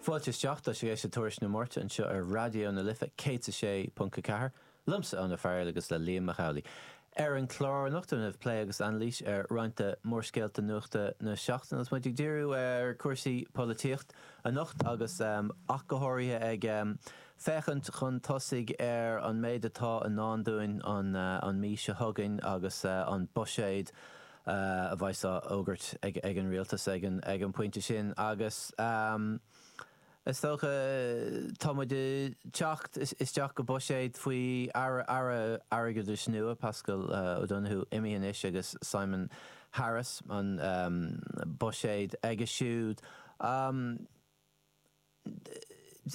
Fáilte isteach, tá sibh ag éisteacht le Tuairisc na Máirte anseo ar Raidió na Life 106.4, liomsa, Eoin Ó Fearghail agus le Liam Mac Amhlaigh. Ar an chlár anocht déanfar plé agus anailís ar roinnt de mhórscéalta nuachta na seachtaine agus muid ag díriú ar cúrsaí polaitíocht anocht agus ach go háirithe ag féachaint chun tosaigh ar an méid atá i ndán dúinn an mhí seo chugainn agus an buiséad a bheidh á fhógairt ag an Rialtas ag an bpointe sin agus is dócha tá muid ag teacht isteach go buiséad faoi Aire Airgeadais nua, Paschal Donohoe imithe anois agus Simon Harris an buiséad aige siúd.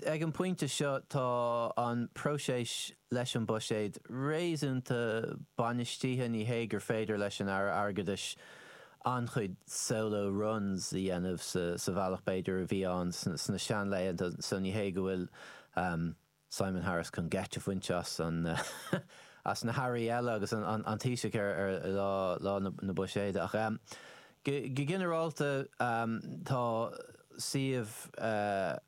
Ag an bpointe seo tá an próiseas leis an mbuiséad réasúnta bainistithe. Ní hé gur féidir leis an Aire Airgeadais an-chuid solo runs a dhéanamh sa bhealach b'fhéidir a bhí ann sna seanlaetha so ní hé go bhfuil Simon Harris chun geit a bhaint as na hairí eile agus an Taoiseach ar lá na buiséide. Ach go ginearálta tá suíomh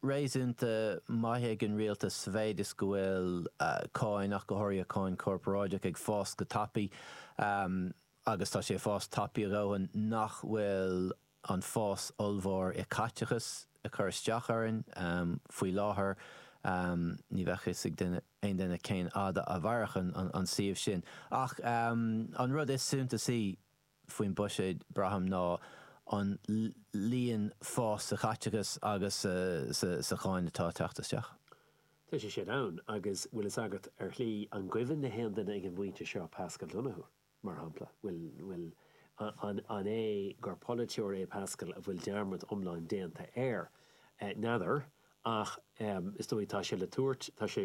réasúnta maith ag an rialtas sa mhéid is go bhfuil cáin, ach go háirithe cáin chorparáideach, ag fás go tapaidh agus tá sé ag fás tapaidh a dhóthain nach bhfuil an fás ollmhór i caiteachas ag cur isteach orainn. Faoi láthair ní bheadh a fhios ag duine aon duine cén fhad a mhairfeadh an suíomh sin. Ach an rud is suntasaí faoin buiséad, braithim, ná an líon fás sa chaiteachas agus sa cháin atá ag teacht isteach. Tá sé sin ann, agus bhfuil fhios agat, ar shlí, an gcuimhin le haon duine ag an bpointe seo Paschal Donohoe? mar shampla. Bhuel, an é gur polaiteoir é Paschal a bhfuil dearmad iomlán déanta air? N'fheadar, ach is dóigh tá sé le tabhairt, tá sé,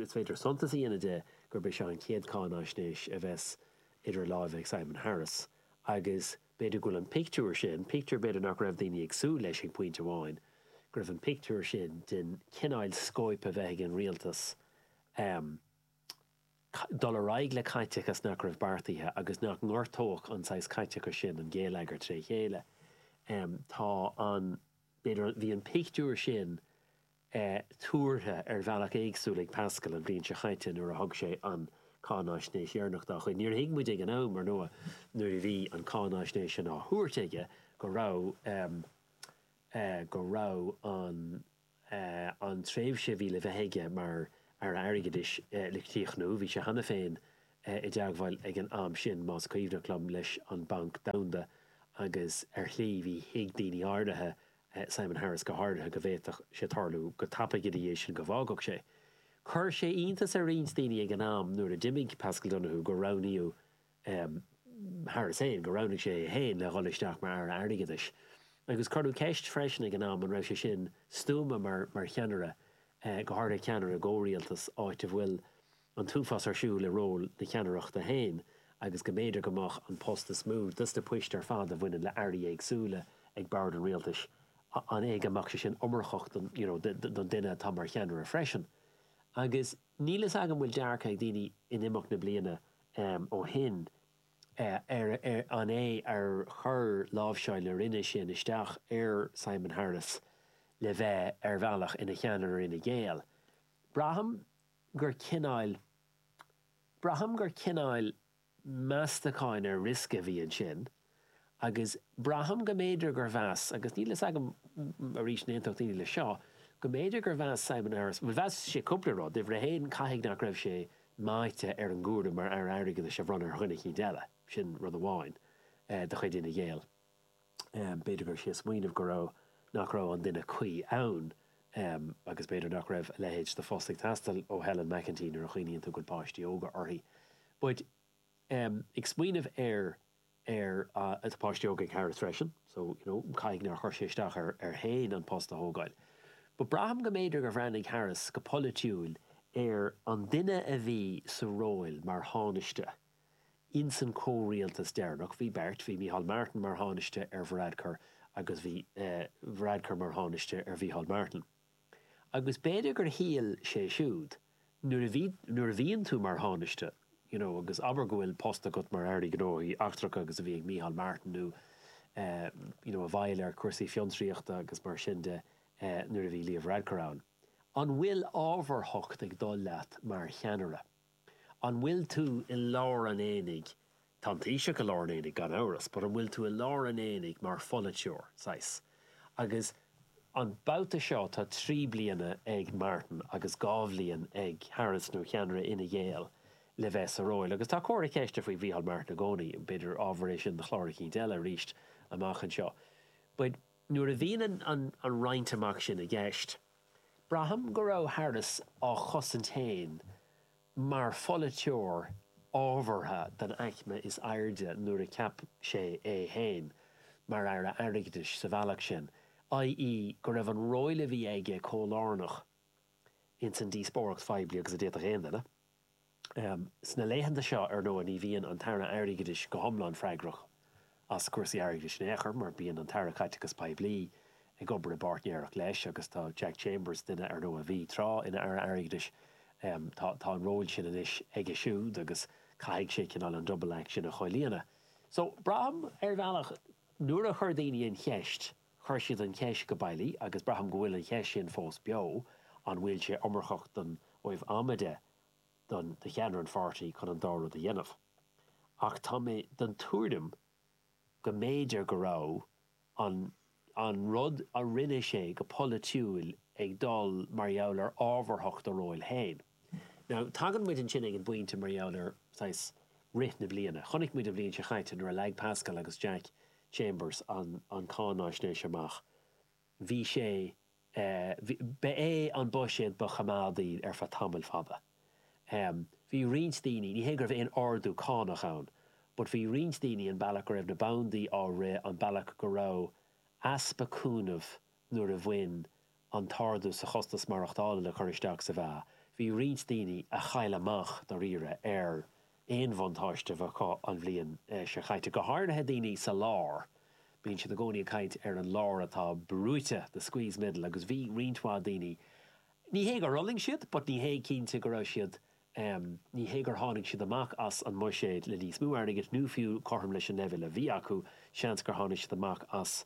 is féidir suntas a dhéanamh de gurb é seo an chéad cháinaisnéis a bheas idir láimhe ag Simon Harris agus b'fhéidir go bhfuil an pictiúr sin, pictiúr b'fhéidir nach raibh daoine ag súil leis ag pointe amháin, go raibh an pictiúr sin den chineál scóip a bheith ag an rialtas, dul ar aghaidh le caiteachas nach raibh beartaithe agus nach ngortódh an saghas caiteachais sin an géilleagar tré chéile. Tá an, b'fhéidir, bhí an pictiúr sin tuartha ar bhealach éagsúil ag Paschal an bhliain seo chaite nuair a thug sé an cháinaisnéis dheireanach dá chuid. Níor thuig muid ag an am, ar ndóigh, nuair a bhí an cháinaisnéis sin á thabhairt aige go raibh, go raibh an. an tréimhse a bhí le bheith aige mar Aire Airgeadais le críochnú. Bhí sé cheana féin i dteagmháil ag an am sin, más cuimhneach liom, leis an mBanc Domhanda agus, ar shlí, thuig daoine áirithe, Simon Harris go háirithe, go bhféadfadh sé tarlú go tapaidh ina dhiaidh sin go bhfágfadh sé. Chuir sé iontas ar roinnt daoine ag an am nuair a d'imigh Paschal Donohoe gur roghnaíodh Harris féin gur roghnaigh sé é féin le dhul isteach mar Aire Airgeadais, agus cuireadh ceist freisin ag an am an raibh sé sin stuama mar cheannaire, go háirithe ceannaire i gcomhrialtas, áit a bhfuil an t-uafás ar siúl i ról na ceannaireachta féin agus go mb'fhéidir go mbeadh an post is mó de na poist ar fad a bhaineann le hairí éagsúla ag bord an rialtais, an é go mbeadh sé sin iomarcach don duine atá mar cheannaire freisin? Agus níl a fhios agam bhfuil dearcadh ag daoine in imeacht na bliana ó shin, an é ar chuir láimhseáil na Roinne sin isteach ar Simon Harris le bheith ar bhealach ina cheannaire Fhine Gael? Braithim gur cineál, braithim gur cineál meastacháin ar riosca a bhí ansin. agus braithim go mb'fhéidir gur mheas, agus níl a fhios agam, arís, an aontódh daoine leis seo, go mb'fhéidir gur mheas Simon Harris, bhuel, mheas sé cúpla rud, uimhir a haon, caithfidh nach raibh sé meáite ar an gcúram mar Aire Airgeadais a bhronnadh ar dhuine eicínt eile, sin rud amháin de chuid Fhine Gael, b'fhéidir go raibh sé ag smaoineamh go raibh, nach raibh an duine cuí ann agus b'fhéidir nach raibh a leithéid de phost ag teastáil ó Helen McEntee nuair a chuimhníonn tú go bhfuil páistí óga aici, but, ag smaoineamh ar, ar, tá páistí óga ag Harris freisin so you know caithfidh nár chuir sé isteach air féin an post a thógáil but braithim go mb'fhéidir gur bhreathnaigh Harris go polaitiúil ar an duine a bhí sa ról mar Thánaiste insan comhrialtas deireanach bhí beirt bhí Micheál Martin mar Thánaiste ar Varadkar agus bhí Varadkar mar Thánaiste ar Mhicheál Martin. Agus b'fhéidir gur shíl sé siúd, nuair a bhí, nuair a bhíonn tú mar Thánaiste, you know, agus abair go bhfuil post agat mar Aire Gnóthaí Eachtracha agus a bhí ag Micheál Martin nó eh, you know, i bhfeighil ar chúrsaí fiontraíochta agus mar sin de eh, nuair a bhí Leo Varadkar ann, an bhfuil ábharthacht ag dul leat mar cheannaire? An bhfuil tú i lár an aonaigh? Tá an Taoiseach i lár an aonaigh, gan amhras, but an bhfuil tú i lár an aonaigh mar pholaiteoir, saghas? Agus an babhta seo tá trí bliana ag Martin agus dhá bhliain ag Harris, nó ceannaire Fhine Gael, le bheith sa ról. Agus tá comhartha ceiste faoi Mhícheál Martin i gcónaí, b'fhéidir gur ábhar é sin do chlár eicínt eile arís amach anseo. But nuair a bhíonn an roinnt amach sin i gceist, Braithim go raibh Harris á chosaint féin mar pholaiteoir ábhartha den aicme is airde nuair a cheap sé é féin mar Aire Airgeadais sa bhealach sin, ii, go raibh an ról a bhí aige chomh lárnach ins an díospóireacht phoiblí agus a d'fhéadfadh aon duine. Sna laethanta seo, ar ndóigh, ní bhíonn an tAire Airgeadais go hiomlán freagrach as cúrsaí airgeadais in aon chor mar bíonn an tAire Caiteachais Poiblí ag obair i bpáirtnéireacht leis agus tá Jack Chambers, duine, ar ndóigh, a bhí tráth ina Aire Airgeadais, tá an ról sin anois aige siúd agus caithfidh sé cineál an double act sin a chomhlíonadh. So, braithim, ar bhealach, nuair a chuir daoine an cheist Chuir siad an cheist go bailí, agus braithim go bhfuil an cheist sin fós beo, an bhfuil sé iomarcach ó thaobh ama de do do cheannaire an pháirtí chun an dá rud a dhéanamh. Ach tá mé den tuairim go mb'fhéidir go raibh an an rud a rinne sé go polaitiúil ag dul mar gheall ar ábharthacht a róil féin. Now, tagann muid ansin ag an bpointe mar gheall ar, saghas, rith na bliana. Chonaic muid an bhliain seo chaite nuair a leag Paschal agus Jack Chambers an cáináisnéis amach. Bhí sé, ba é an buiséad ba choimeádaí ar feadh tamall fada. Bhí roinnt daoine, ní hé go raibh aon ardú cánach ann, but bhí roinnt daoine an bealach go raibh na bandaí á rith, an bealach go raibh easpa cúnaimh nuair a bhain an t-ardú sa chostas maireachtála le cur isteach sa mheá, bhí roinnt daoine a chaill amach dáiríre ar aon bhuntáiste a bheadh acu an bhliain seo caite, go háirithe daoine sa lár. Bíonn siad i gcónaí ag caint ar an lár atá brúite, the squeezed middle, agus bhí roinnt mhaith daoine, ní hé gur fhulaing siad but ní hé cinnte go raibh siad Ní hé gur tháinig siad amach as an mbuiséad le níos mó airgid nó fiú cothrom leis an leibhéal a bhí acu, seans gur tháinig siad amach as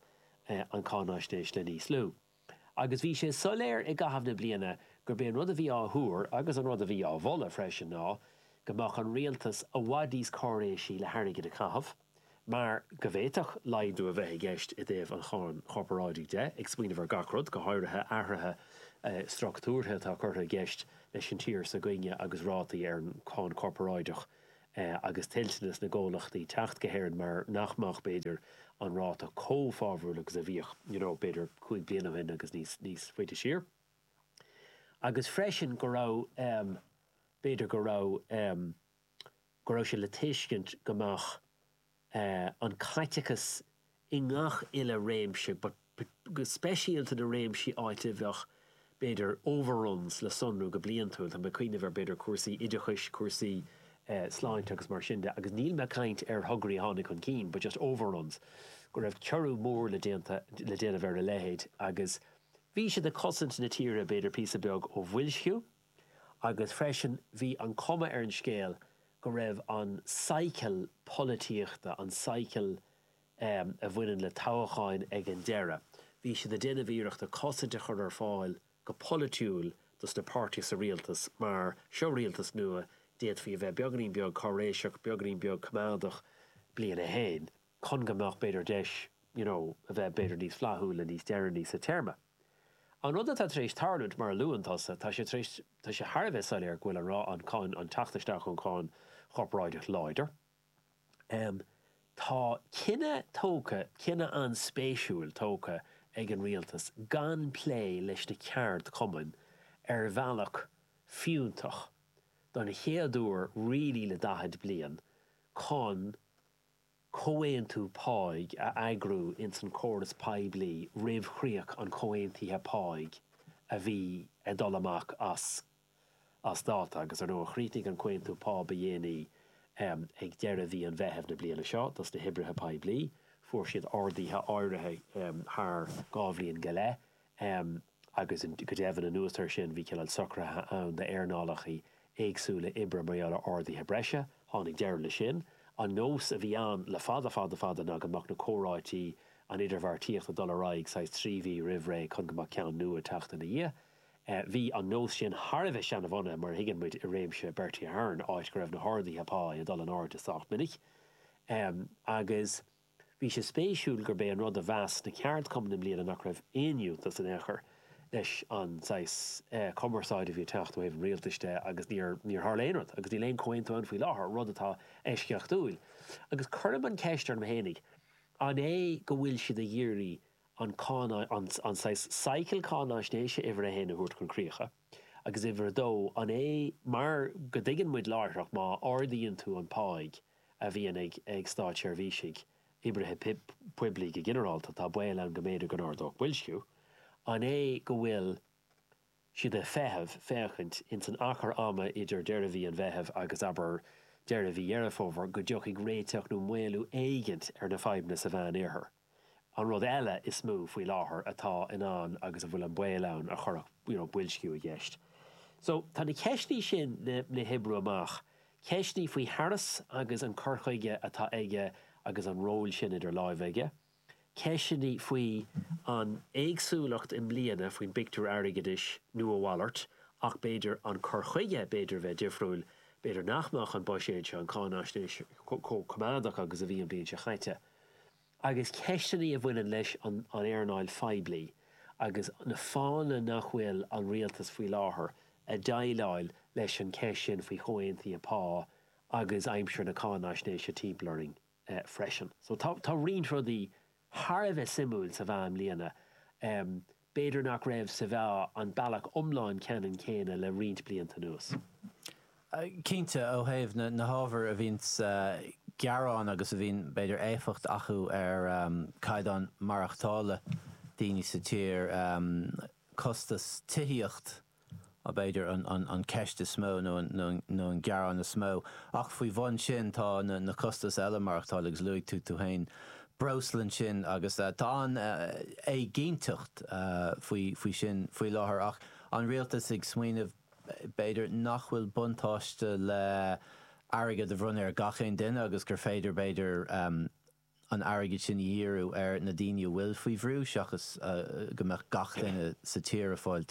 an gcáinaisnéis le níos lú. Agus bhí sé soiléir i gcaitheamh na bliana gurb é an rud a bhí á thuar, agus an rud a bhí á mholadh freisin, ná go mbeadh an rialtas i bhfad níos cáiréisí le hairgead a chaitheamh. mar go bhféadfadh laghdú a bheith i gceist i dtaobh an cháin chorparáidigh de, ag smaoineamh ar gach rud, go háirithe athruithe structúrtha atá curtha i gceist leis an tír s'againne agus rátaí ar an cháin chorparáideach agus toilteanas na gcomhlachtaí teacht go hÉirinn mar nach mbeadh, b'fhéidir, an ráta chomh fabhrúil agus a bhíodh, you know, b'fhéidir, cúig bliana ó shin agus níos, níos faide siar. Agus freisin go raibh, b'fhéidir go raibh. go raibh sé le tuiscint go mbeadh an caiteachas i ngach uile réimse, but go speisialta na réimsí áit a bheadh, b'fhéidir, overruns le sonrú go bliantúil, tá mé ag cuimhneamh ar, b'fhéidir, cúrsaí oideachais, cúrsaí sláinte agus mar sin de, agus níl mé ag caint ar thograí a tháinig chun cinn but just overruns, go raibh ciorrú mór le déanta, le déanamh ar a leithéid agus bhí siad ag cosaint na tíre, b'fhéidir píosa beag ó bhoilsciú. agus freisin bhí an cuma ar an scéal go raibh an cycle polaitíochta, an cycle a bhaineann le toghacháin ag an deireadh, bhí siad ag déanamh iarrachta cosaint a chur ar fáil go polaitiúil dos na páirtithe sa rialtas mar seo rialtas nua, d'fhéadfaí a bheith beagainín beag cáiréiseach, beagainín beag coimeádach, bliain a haon, chun go mbeadh b'fhéidir deis, you know, a bheith b'fhéidir níos flaithiúla níos deireanaí sa téarma. An rud atá tar éis tarlúint, mar a luann tusa, tá sé tar éis, tá sé thar a bheith soiléir go bhfuil an rá- an cáin, an teacht isteach an cháin chorparáideach láidir. Tá cinneadh tógtha, cinneadh an-spéisiúil tógtha ag an Rialtas gan plé leis na ceardchumainn ar bhealach fiúntach, don chéad uair really le 40 bliain, chun comhaontú páigh a eagrú ins an córas poiblí roimh chríoch an chomhaontaithe páigh a bhí ag dul amach as as dáta agus, ar ndóigh, chríochnaigh an comhaontú pá ba dhéanaí ag deireadh mhí an Mheithimh na bliana seo dos na hoibrithe poiblí. Fuair siad arduithe áirithe thar dhá bhliain go leith. agus go deimhin anuas ar sin, bhí cineál socruithe ann d'earnálacha éagsúla oibre mar gheall ar arduithe breise. Tháinig deireadh leis sin. An nós a bhí ann le fada fada fada ná go mbeadh na comhráití, an idirbheartaíocht ag dul ar aghaidh saghas trí mhí roimh ré chun go mbeadh ceann nua ag teacht ina dhiaidh. Bhí an nós sin thar a bheith seanabhunaithe mar a thuigeann muid i réimeas Bertie Ahern, áit go raibh na harduithe pá ag dul in airde sách minic agus, Bhí sé spéisiúil gurb é an rud a mheas na ceardchumainn i mbliana nach raibh aon fhiúntas in aon chor leis an saghas cumarsáide a bhí ag teacht ó thaobh an rialtais de agus níor tharla aon rud agus níl aon chomhaontú ann faoi láthair, rud atá eisceachtúil. Agus cuirim an cheist orm fhéinig, an é go bhfuil siad ag iarraidh an cáin saghas cycle cáináisnéise uimhir a haon a thabhairt chun críocha agus uimhir a dó, an é mar go dtuigeann muid láithreach má ardaíonn tú an páigh, a bhíonn ag státseirbhísigh, oibrithe poiblí go ginearálta, tá baol ann go mb'fhéidir go n-ardódh boilsciú. An é go bhfuil siad ag feitheamh, féachaint, ins an achar ama idir deireadh mhí an Mheithimh agus, abair, deireadh mhí Dheireadh Fómhair, go dtiocfaidh réiteach nó maolú éigint ar na fadhbanna sa Mheánoirthear? An rud eile is mó faoi láthair atá in ann agus a bhfuil an baol ann go gcuirfeadh you know boilsciú i gceist so tá na ceisteanna sin le le hoibriú amach, ceisteanna faoi Harris agus an cur chuige atá aige agus an ról sin idir láimhe aige, ceisteanna faoi an éagsúlacht i mbliana faoin bpictiúr airgeadais nó a mhalairt ach b'fhéidir an cur chuige b'fhéidir a bheith difriúil, b'fhéidir nach mbeadh an buiséad seo, an cáinfhaisnéis, chomh coimeádach agus a bhí an bhliain seo chaite. agus ceisteanna a bhaineann leis an earnáil phoiblí agus na fáthanna nach bhfuil an Rialtas faoi láthair ag déileáil leis an cheist sin faoi chomhaontuithe pá agus aimsir na cáinfhaisnéise timpeall orainn freisin. So tá roinnt rudaí thar a bheith suimiúil sa mheá i mbliana. B'fhéidir nach raibh sa mheá an bealach iomlán ceannann céanna le roinnt blianta anuas. Cinnte, ó thaobh na hábhair a bhíonn gearáin agus a bhíonn, b'fhéidir, éifeacht acu ar chaighdeán maireachtála daoine sa tír, costas tithíocht, b'fhéidir, an cheist is mó nó an gearán is mó. Ach faoi bhun sin tá na costais eile maireachtála agus luaigh tú tú féin breosla ansin agus tá an-éiginnteacht faoi sin faoi láthair ach an Rialtas ag smaoineamh b'fhéidir nach bhfuil buntáiste le airgead a bhronnadh ar gach aon duine agus gur féidir b'fhéidir an airgead sin a dhíriú ar na daoine a bhfuil faoi bhrú seachas go mbeadh gach duine sa tír ag fáil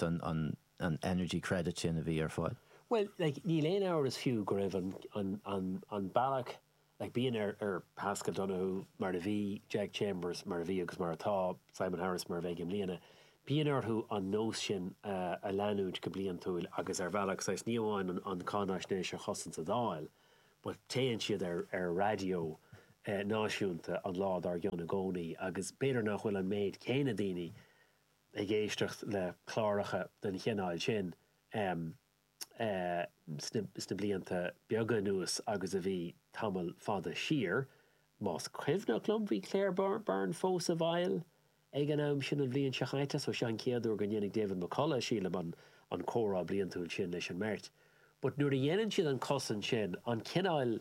an energy credit sin a bhí ar fáil. Bhuel, níl aon amhras fiú go raibh an bealach, bíonn ar Paschal Donohoe, mar a bhí, Jack Chambers, mar a bhí agus mar atá, Simon Harris, mar a bheidh i mbliana, bíonn orthu an nós sin a leanúint go bliantúil agus ar bhealach, saghas, ní amháin an cáinfhaisnéis a chosaint sa Dáil, But téann siad ar raidió náisiúnta an lá dár gcionn i gcónaí agus b'fhéidir nach bhfuil an méid céanna daoine ag éisteacht le cláracha den chineál sin sna blianta beaga anuas agus a bhí tamall fada siar. Más cuimhneach liom, bhí Claire Byrne fós i bhfeighil Ag an am sin an bhliain seo chaite, so seo an chéad uair go ndéanfaidh David McCullagh, sílim, an an comhrá bliantúil sin leis an mbeirt. But nuair a dhéanann siad an cosaint sin, an cineáil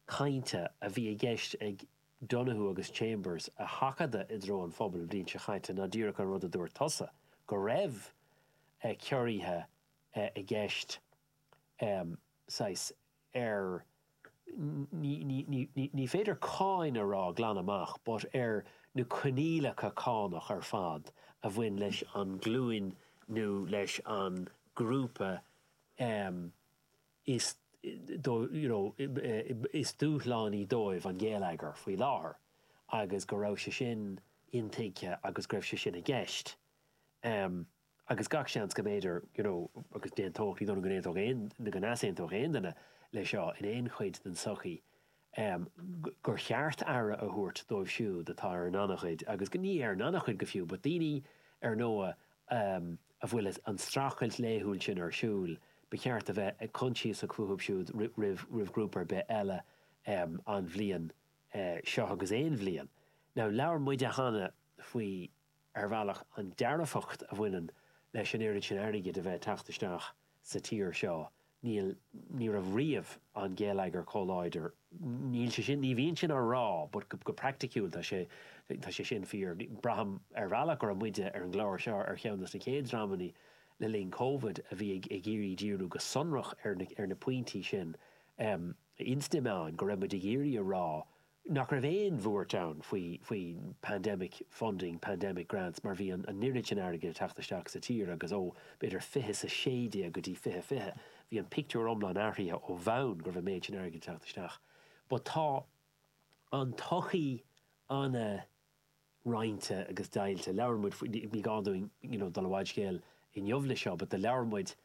cainte a bhí i gceist ag Donohoe agus Chambers a sheachadadh i dtreo an phobail an bhliain seo chaite ná díreach an rud a dúirt tusa, go raibh ciorruithe i gceist, saghas, ar, ní féidir cáin a rá glan amach, but ar na coinníollacha cánach ar fad a bhain leis an ghlúin nó leis an ghrúpa is, you know, is dúshlánaí dóibh an géilleagar faoi láthair agus go raibh sé sin intuigthe agus go raibh sé sin i gceist. agus gach seans go mb'fhéidir, you know, agus d'aontódh, ní dóigh liom go n-aontódh aon, nó go n-easaontódh aon duine leis seo in aon chuid den tsochaí, em, gur cheart aire a thabhairt dóibh siúd atá ar an ngannchuid agus go, ní ar an ngannchuid go fiú, but daoine, ar ndóigh, em, a bhfuil an streachailt laethúil sin ar siúl, ba cheart a bheith coinsiasach fúthu siúd roimh, roimh ghrúpa ar bith eile, em, an bhliain, eh, seo agus aon bhliain. Now, labhair muide cheana faoi, ar bhealach, an dearfacht a bhaineann leis an oiread sin airgid a bheith ag teacht isteach sa tír seo, níl, ní raibh riamh an géilleagar chomh láidir, níl sé sin, ní bhíonn sin á rá but go, go praiticiúil tá sé, tá sé sin fíor. Braithim ar bhealach go raibh muide ar an gclár seo ar cheann de na chéad dreamanna le linn Covid a bhí ag, ag iarraidh díriú go sonrach ar na, ar na pointí sin. Is cuimhin liom go raibh muid ag iarraidh a rá nach raibh aon bhuairt ann faoi pandemic funding, pandemic grants mar bhí an oiread sin airgid ag teacht isteach sa tír agus ó, b'fhéidir, fiche is a sé déag go dtí fiche fiche, bhí an pictiúr iomlán athraithe ó bhonn go raibh an méid sin airgid ag teacht isteach. But tá an tsochaí an-. roinnte agus deighilte. Labhair muid faoi, ní gá dúinn you know dul i bhfad scéil inniu leis seo, but do labhair muid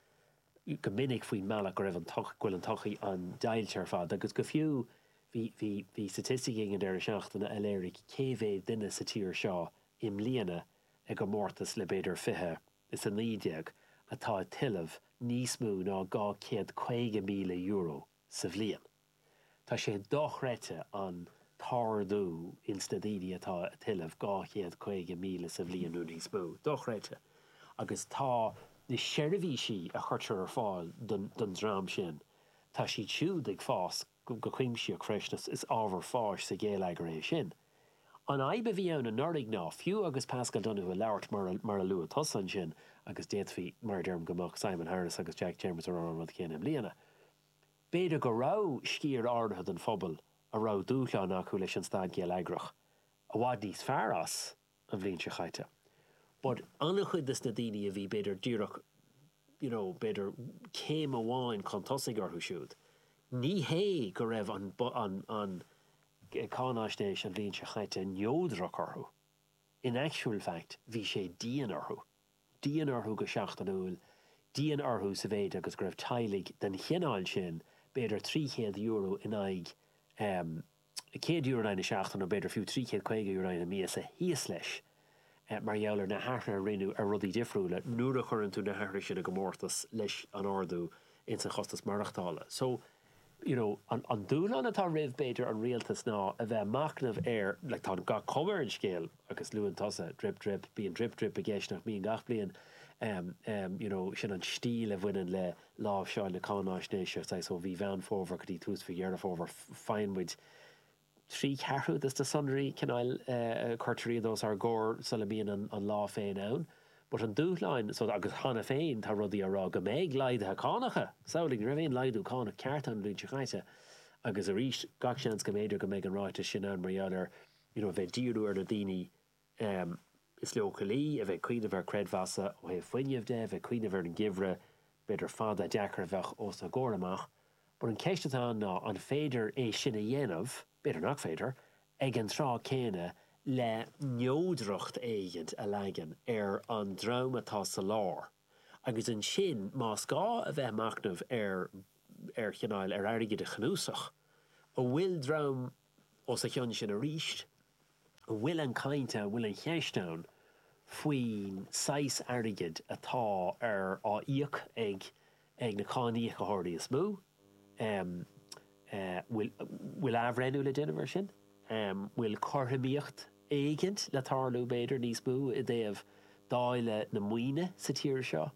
go minic faoin mbealach go raibh an go bhfuil an tsochaí an-deighilte ar fad agus go fiú bhí, bhí, bhí staitisticí ag an deireadh seachtaine a léirigh cé mhéad duine sa tír seo i mbliana i gcomórtas le b'fhéidir fiche is a naoi déag atá ag tuilleamh níos mó ná dhá chéad caoga míle euro. sa bhliain. Tá sé dochreidte an t-ardú ins na daoine atá ag tuilleamh, dhá chéad caoga míle sa bhliain nó níos mó. Dochreidte. Agus tá na seirbhísí a chuirtear ar fáil don don dream sin, tá siad siúd ag fás go cuimsitheach freisin. Is ábhar fáis sa ghéilleagar é sin. An fhadhb a bhí ann anuraidh ná fiú agus Paschal Donohoe ag labhairt mar a luaigh tusa ansin, agus d'fhéadfaí, mar a deirim, go mbeadh Simon Harris agus Jack Chambers ag rá an rud chéanna i mbliana, b'fhéidir go raibh sciar áirithe den phobal a raibh dúshlán acu leis an staid gheilleagrach i bhfad níos fearr as an bhliain seo chaite. But an-chuid de na daoine a bhí b'fhéidir díreach, you know, b'fhéidir céim amháin chun tosaigh orthu siúd, ní hé go raibh an, an, an, cáinaisnéis an bhliain seo chaite neodrach orthu, in actual fact bhí sé dian orthu, dian orthu go seachtainiúil, dian orthu sa mhéid agus go raibh teaghlaigh den chineál sin b'fhéidir €300 in aghaidh, um, €100 in aghaidh na seachtaine, nó b'fhéidir fiú €350 in aghaidh na míosa, thíos leis, mar gheall ar na hathruithe a rinneadh ar rudaí difriúla, nuair a chuireann tú na hathruithe sin i gcomórtas leis an ardú ins an chostas maireachtála. So, you know, an dúshlán atá roimh, b'fhéidir, an Rialtas ná a bheith a' machnamh ar, like, tá an, gach cuma ar an scéal, agus luann tusa drip drip, bíonn drip drip i gceist nach mbíonn gach bliain em, em, you know, sin an stíl a bhaineann le láimhseáil na cáináisnéise, saghas ó mhí Mheán Fómhair go dtí tús mhí Dheireadh Fómhair, faigheann muid trí cheathrú de na sonraí, cineáil, eh, eh, cuirtear iad os ár gcomhair sula mbíonn an, an lá féin ann. But an dúshlán, so agus cheana féin tá rudaí á rá go mbeidh laghduithe cánacha, samhlaigh, ní raibh aon laghdú cánach ceart ann an bhliain seo caite agus arís gach seans go mb'fhéidir go mbeidh an ráiteas sin ann mar gheall ar you know a bheith ag díriú ar na daoine is leochailí, a bheith ag cuimhneamh ar chreidmheasa ó thaobh fuinnimh de, a bheith ag cuimhneamh ar an geimhreadh b'fhéidir fada, deacair a bheadh os a gcomhair amach. But an cheist atá ann ná an féidir é sin a dhéanamh, b'fhéidir nach féidir, ag an tráth céanna le neodracht éigint a leagan ar an dream atá sa lár agus ansin más gá a bheith ag machnamh ar, ar chineál, ar airgead a chnuasach, an bhfuil dream Os a chionn sin arís, an bhfuil an chaint ann, an bhfuil an cheist ann faoin saghas airgid atá á íoc ag na cáiníocóirí is mó? An bhfuil athbhreithniú le déanamh air sin? An bhfuil cothromaíocht éigint le tarlú, b'fhéidir, níos mó i dtaobh dáileadh na maoine sa tír seo?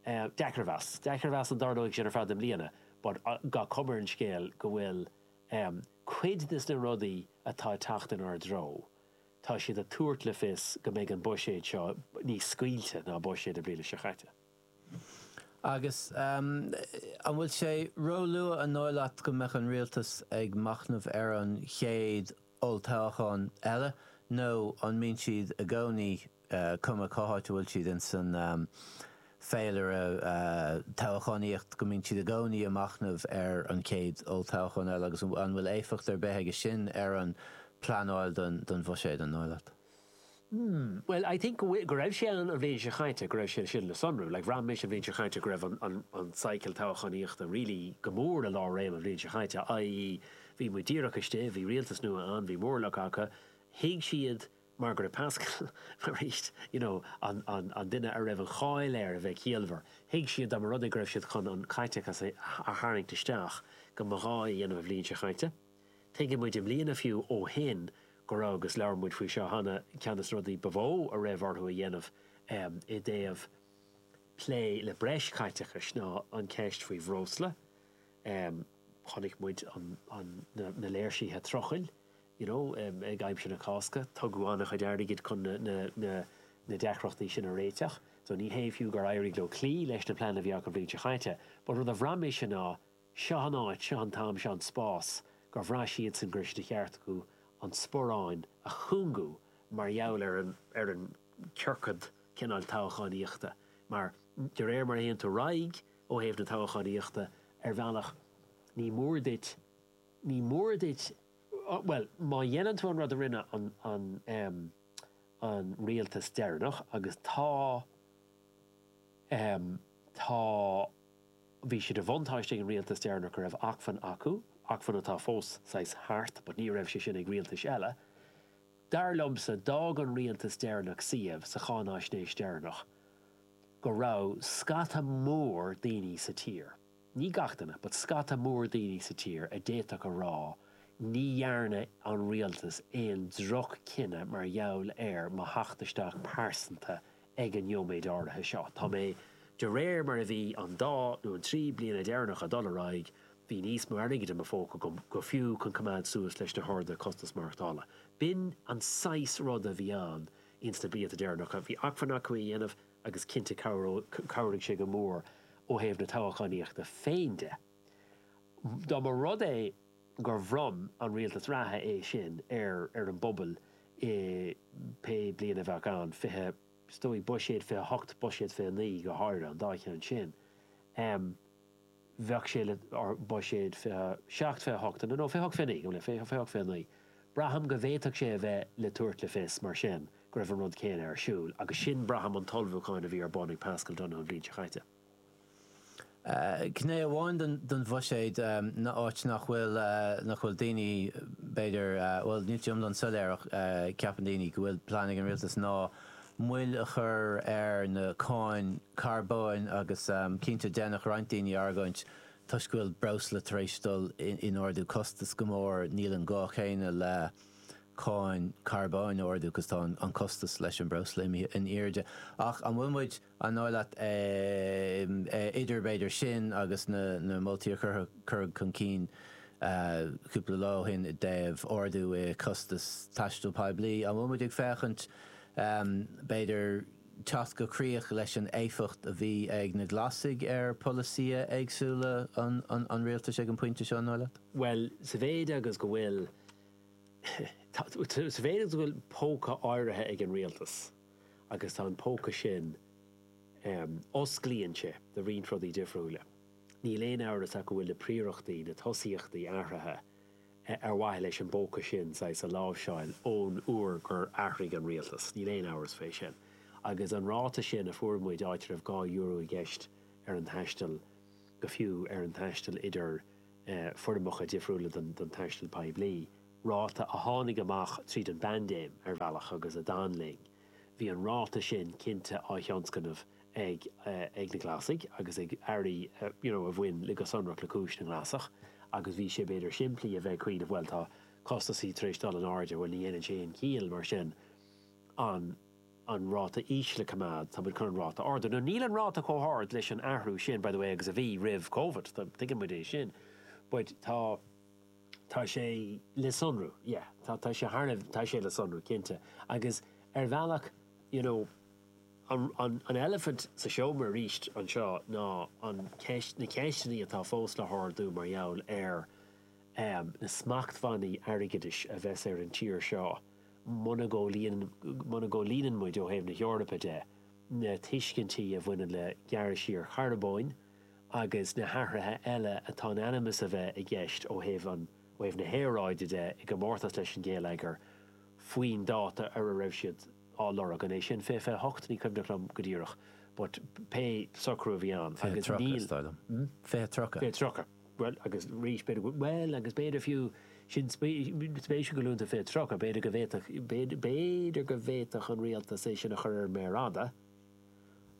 Deacair a mheas. Deacair a mheas an dtarlóidh sin ar feadh na mbliana, but gach cuma ar an scéal go bhfuil Um cuid des na rudaí atá ag teacht inár dtreo, tá siad ag tabhairt le fios go mbeidh an buiséad seo níos scaoilte ná buiséad na bliana seo caite. Agus an bhfuil sé róluath an dóigh leat go mbeadh an Rialtas ag machnamh ar an chéad olltoghchán eile nó an mbíonn siad i gcónaí cuma cá háit a bhfuil siad ins an féilire toghchánaíochta, go mbíonn siad i gcónaí a machnamh ar an chéad olltoghchán eile agus an bhfuil éifeacht ar bith aige sin ar an bpleanáil don bhuiséad, an dóigh leat? Hmm, bhuel, I think go raibh sé ann an bhliain seo chaite, go raibh sé sin le sonrú. Like, bhraith mise an bhliain seo chaite go raibh an cycle toghchánaíochta really go mór i lánréim an bhliain seo chaite, i.e. bhí muid díreach istigh, bhí rialtas nua ann, bhí móramh acu, thuig siad, Mar gheall ar Paschal, arís, you know an duine a raibh an cháil air a bheith ciallmhar, thuig siad dá mba rud é go raibh siad chun an caiteachas a tharraingt isteach go mba ghá é a dhéanamh an bhliain seo chaite. Tuigeann muid i mbliana fiú ó shin go raibh, agus labhair muid faoi seo cheana, ceann des na rudaí ba mhó a raibh orthu a dhéanamh i dtaobh plé le breis caiteachais ná an ceist faoi bhreosla, em chonaic muid an an na na léirsithe trucail you know em ag aimsir na Cásca tugadh ana chuid airgid chun na na na na deacrachtaí sin a réiteach so ní hé fiú gur éirigh leo cloí leis na pleananna a bhí acu an bhliain seo chaite but rud a bhraith mise ná seo an áit seo an t-am seo an spás gur bhraith siadsan go raibh sé de cheart acu an sparán a chúngú mar gheall ar an ar an ciorcad cineál toghchánaíochta mar de réir mar a théann tú ar aghaidh Ó thaobh na toghchánaíochta ar bhealach, ní mór duit, ní mór duit, bhuel, má dhéanann tú an rud a rinne an, an, an rialtas deireanach, agus tá, tá, bhí sé de bhuntáiste ag an rialtas deireanach go raibh acmhainn acu, acmhainn atá fós saghas thart, but ní raibh sé sin ag rialtais eile, dar liomsa, d'fhág an rialtas deireanach suíomh sa cháinaisnéis deireanach. go raibh scata mór daoine sa tír, ní gach duine, but scata mór daoine sa tír a d'fhéadfadh a rá ní dhearna an rialtas aon droch-chinneadh mar gheall ar mo theacht isteach pearsanta ag an nóiméad áirithe seo. Tá mé, de réir mar a bhí an dá nó an trí bliana deireanacha ag dul ar aghaidh, bhí níos mó airgid i mo phóca agam go fiú chun coimeád suas leis na horduithe costas maireachtála. B'in an saghas rud a bhí ann. Ins na blianta deireanacha bhí acmhainn acu é a dhéanamh agus cinnte chabhraigh sé go mór ó thaobh na toghchánaíochta féin de. Dá mba rud é gur bhronn an rialtas reatha é sin ar ar an bpobal i pé bliain a bheadh ann, fiche, is dóigh, buiséad 28, buiséad 29 go háirithe, an dá cheann sin, bheadh sé le buiséad 27, 28 nó 28, 29, go bhfuil é, 28, 29. Braithim go bhféadfadh sé a bheith le tabhairt le fios, mar sin, go raibh an rud céanna ar siúl, agus sin, braithim, an t-ullmhúchán a bhí ar bun ag Paschal Donohoe an bhliain seo chaite. Gné amháin den bhuiséad ná áit nach bhfuil, nach bhfuil daoine, b'fhéidir, bhuel, níl sé iomlán soiléir ach ceapann daoine go bhfuil plean ag an Rialtas ná, moill a chur ar na cáin carbóin agus cinnte déanfadh roinnt daoine argóint toisc go bhfuil breosla tar éis dul in ardú costas go mór níl an gá céanna le cáin carbóin a ardú 'cause tá an costas leis an mbreosla imithe in airde ach an bhfuil muid an dóigh leat idir b'fhéidir sin agus na na moltaí a chur cuireadh chun cinn cúpla lá ó shin i dtaobh ardú i gcostas taistil poiblí an bhfuil muid ag féachaint B'fhéidir teacht go críoch leis an éifeacht a bhí ag na Glasaigh ar pholasaithe éagsúla an rialtais ag an bpointe seo, an dóigh leat? Bhuel, sa mhéid agus go bhfuil, sa mhéid agus go bhfuil póca áirithe ag an rialtas agus tá an póca sin, osclaíonn sé do roinnt rudaí difriúla, níl aon amhras ach go bhfuil na príorachtaí, na tosaíochtaí athraithe. ar mhaithe leis an bpóca sin, saghas, a láimhseáil ón uair gur athraigh an rialtas, níl aon amhras faoi sin. Agus an ráta sin a fuair muid, áit a raibh dhá euro i gceist ar an taisteal, go fiú ar an taisteal idir foirmeacha difriúla den taisteal poiblí, ráta a tháinig amach tríd an bpaindéim, ar bhealach, agus a d'fhan linn, bhí an ráta sin cinnte á thionscnamh ag na Glasaigh agus ag airí you know a bhain le go sonrach le cúis na nGlasach agus bhí sé b'fhéidir simplí a bheith cineál bhuel tá costasaí tar éis dul in airde bhuel ní dhéanann sé aon chiall mar sin an an ráta íseal a coimeád tá muid chun an ráta a ardú now níl an ráta chomh hard leis an athrú sin by the way agus a bhí roimh Covid tá tuigeann muid é sin but tá tá sé le sonrú yeah tá tá sé thar tá sé le sonrú cinnte agus ar bhealach you know An eilifint sa seomra arís anseo ná an cheist, na ceisteanna atá fós le hardú mar gheall ar na smachtbhannaí airgeadais a bheas ar an tír seo muna gcomhlíonann, muna gcomhlíonann muid ó thaobh na hEorpa de, na tuiscintí a bhaineann le gearradh siar charbóin agus na hathruithe eile atá in ainm is a bheith i gceist ó thaobh an, ó thaobh na haeráide de i gcomórtas leis an ghéilleagar faoin dáta ar a raibh siad á lorg. An é sin fiche 28? Ní cuimhneach liom go díreach but pé socrú a bhí ann agus níl. Fiche tríocha, is dóigh liom. Hm? Fiche tríocha. Fiche tríocha. Bhuel, agus arís, b'fhéidir go bhfuil, bhuel, agus b'fhéidir fiú, sin spéisiúil go luann tú fiche tríocha, b'fhéidir go bhféadfadh, b'fhéidir go bhféadfadh an Rialtas é sin a chur ar an méar fhada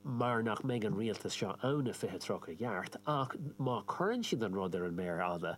mar nach mbeidh an Rialtas seo ann i fiche tríocha i gceart ach má cuireann siad an rud ar an méar fhada,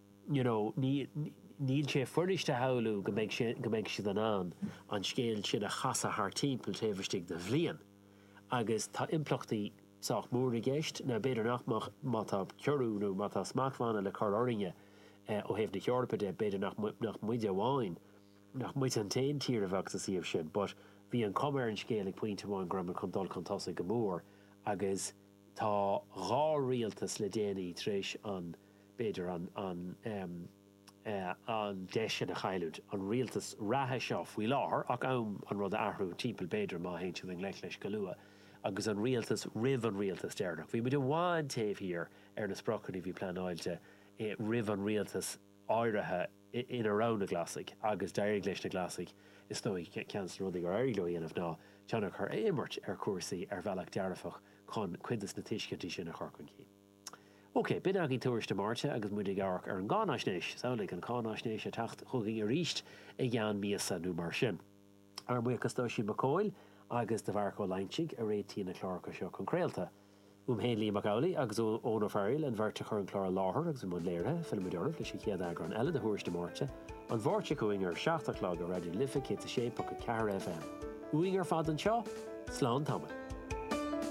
you know níl sé furasta a shamhlú go mbeidh sé, go mbeidh siad in ann an scéal sin a chasadh thart timpeall taobh istigh de bhliain agus tá impleachtaí sách mór i gceist, now b'fhéidir nach mbeadh, má tá ciorrú nó má tá smachtbhanna le cur orainne ó thaobh na hEorpa de, b'fhéidir nach, nach muide amháin, nach muid an t-aon tír a bheadh sa suíomh sin but bhí an chuma ar an scéal ag pointe amháin go raibh muid chun dul chun tosaigh go mór agus tá dhá rialtas le déanaí tar éis an b'fhéidir an deis sin a chailliúint. An rialtas reatha seo faoi láthair, tá am an rud a athrú timpeall b'fhéidir má théann siad i ngleic leis go luath, agus an rialtas roimh an rialtas deireanach. Bhí muid i bhfad taobh thiar ar na spriocanna a bhí pleanáilte roimh an rialtas áirithe ina raibh na Glasaigh, agus d'éirigh leis na Glasaigh, is dóigh, ceann de na rudaí gur éirigh leo a dhéanamh ná tionchar a imirt ar chúrsaí ar bhealach dearfach chun cuid de na tuiscintí sin a chur chun cinn. OK, b'in againn Tuairisc na Máirte agus muid ag amharc ar an gcáinaisnéis. Samhlaigh an cáinaisnéis ag teacht chugainn arís i gceann míosa nó mar sin. Ár mbuíochas d'Oisín Mac Cumhaill agus do Mharc Ó Loingsigh a réitíonn na cláracha seo chun craolta. Uaim féin Liam Mac Amhlaigh agus Eoin Ó Fearaíl an bheirt a chuir an clár i láthair agus a bhí i mbun léirithe. Fillfimid oraibh leis an chéad eagrán eile de Thuairisc na Máirte, an Mháirt seo chugainn ar a seacht a chlog ar Raidió na Life 106.4 FM. Uainn ar fad anseo, slán tamaill.